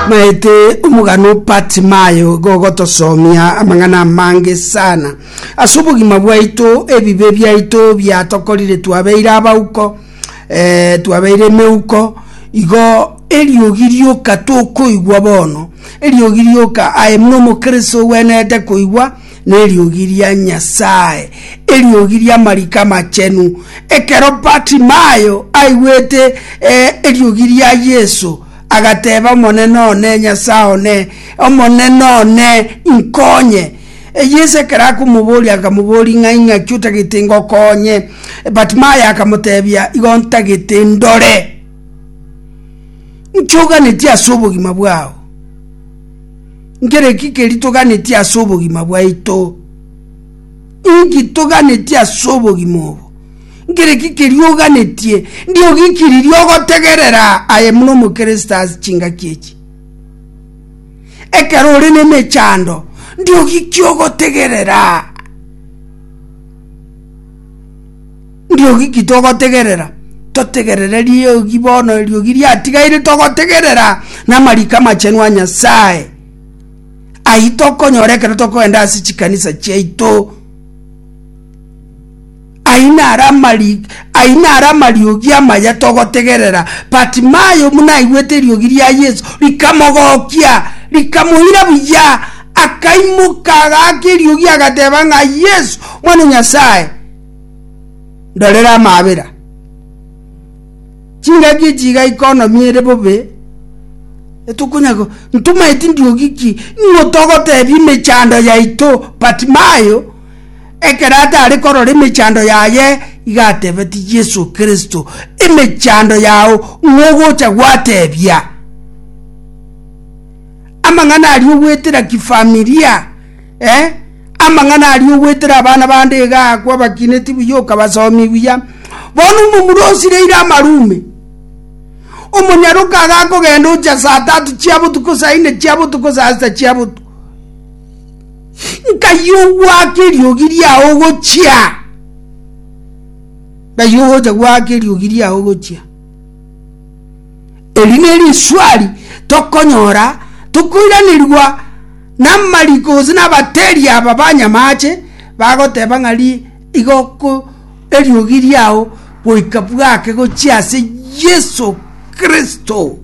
Maete omogano Bartimayo igo ogotosomia amang'ana amange sana ase obogima bwaito, ebibe biaito biatokorire twabeire abauko, eh, twabeire emeuko, igo eriogi rioka tokoigwa bono, eriogi rioka aye buna omokristo ogwenerete koigwa. Neriogi ria Nyasae, eriogi ri'amariko amachenu. Ekero Bartimayo aigwete eriogi ria Yeso, agateba, Omonene one, Nyasae one, Omonene one, inkonye! Yeso ekero akomoboria, akamoboria, Ng'ai ng'aki otagete ngokonye? Bartimayo akamotebia, Igo ntagete ndore. Inki oganetie ase obogima bwao? Nkere ki keri toganetie ase obogima bwaito? Inki toganetie ase obogima obo? Nkere ki keri oganetie? Ndiogikiririe ogotegerera aye muna omokristo ase chingaki echi. Ekero ore nemechando, ndiogiki ogotegerera. Riogi ki togotegerera? Totegerere riogi bono, eriogi riatigaire togotegerera n'amariko amachenu a Nyasae. Ayio tokonyora ekero tokogenda ase chikanisa chiaito. Ayio naro amari, ayio naro amariogi amaya togotegerera. Bartimayo buna aigwete eriogi ria Yeso, rikamogokia, rikamoira buya, akaimoka agaaka eriogi agateba ng'a, Yeso, Omwana o Nyasae! ndorere amaabera. Chingaki echi iga ikonomiere bobe, etokonya go- ntomaeti ndiogi ki, nigo togotebia emechando yaito, Bartimayo, ekero atare korora emechando yaye, iga atebetie Yeso Kristo, Emechando yao ng'ogocha gwatebia. Amang'ana aria ogwetera kifamilia. Eh, amang'ana aria ogwetera abana bande iga agakwa abakineti buya okabasomia buya. Bono omomura osireire amarume. Omonyaroka agakogenda ocha saa tatu chia botuko saa ine chia botuko saa sita chia botuko. Nkai ogwake eriogi riao ogochia. Nkai ogocha gwake eriogi riao ogochia. Eri neriswali tokonyora tokoiranerigwa namariko gose nabateeri aba banyamaache bagoteba ng'a ri igo ko eriogi riao goika bwake gochia ase Yeso Kristo.